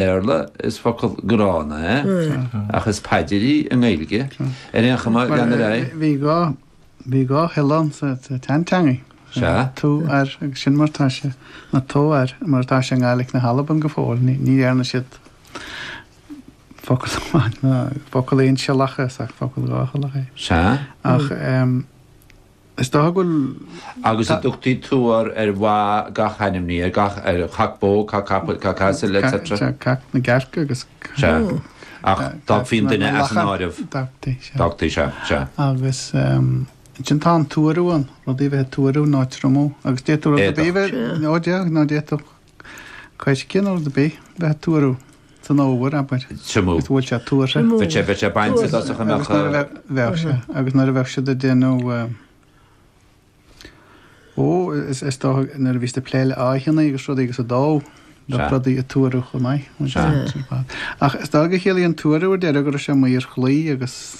Béarla is focal gránna é, ach is paidir í i nGaeilge, ar aon chuma lena raibh. Bhí dhá, bhí dhá shiolla ann sa tseanteangaidh. Sea. Tú, ar, agus sin mar atá sé, nó tú, ar, mar atá sé i nGaeilge na hAlban go fóill. Ní, ní dhearna siad focal amháin, ná focal aonsiollach as, ach focal dháshiollach é. Sea. Ach, em, Is dócha go bhfuil. Agus an dtugtaí tuar ar bha gach ainmhí, ar gach, ar chac bó, cac capaill, cac asail, etc. Sea, sea, cac na gcearc agus cac. Sea, ach d'fhágfaí an duine as an áireamh. D'fhágtaí, sea. D'fhágtaí, sea, sea. Agus, ansin tá an tuarú ann, rudaí a bheith ag tuarú nó ag triomú, agus d'fhéadfadh rud ar bith a bheith, ó d'fhéadfadh, nó d'fhéadfadh. Coirce nó rud ar bith bheith ag tuaradh san fhómhar, abair, Triomú. agus go bhfuil sé tuartha. Triomú. Bheadh sé, bheadh sé bainte i dtosach, an mbeadh. Agus nuair a bheadh, bheadh sé. Agus nuair a bheadh siad ag déanamh, ó, is, is dócha nuair a bhí siad ag plé le háitheannaí agus rudaí agus ag dó, bheadh Sea. rudaí ag tuaradh chomh maith. Sea. Ach is dócha gur chiallaigh an tuaradh ar deireadh go raibh sé maor chlaí agus.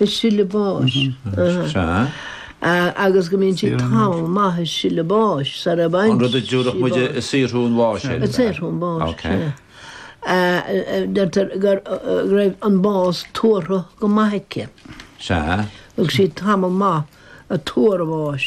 Ag sileadh báis. Sea. Agus go mbíonn sí tamall maith ag sileadh báis sara bhfaigheann sí bás. An rud a dtiúrfadh muid ag saothrú an bháis air. Ag saothrú an bháis. Ok. Deirtear go raibh an bás tuartha go maith aici. Sea. Thug sí tamall maith ag tuar an bháis.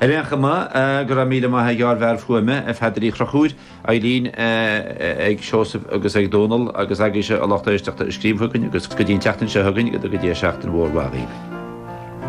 Ar aon chuma, go raibh míle maith ag ár bhfear fuaime, a Pheadair Uí Chonchúir, Eileen, ag Seosamh agus ag Dónal agus agaibhse a lucht éisteachta a scríobh chugainn agus go dtí an tseachtain seo chugainn go dtuga Dia seachtain mhór mhaith dhaoibh.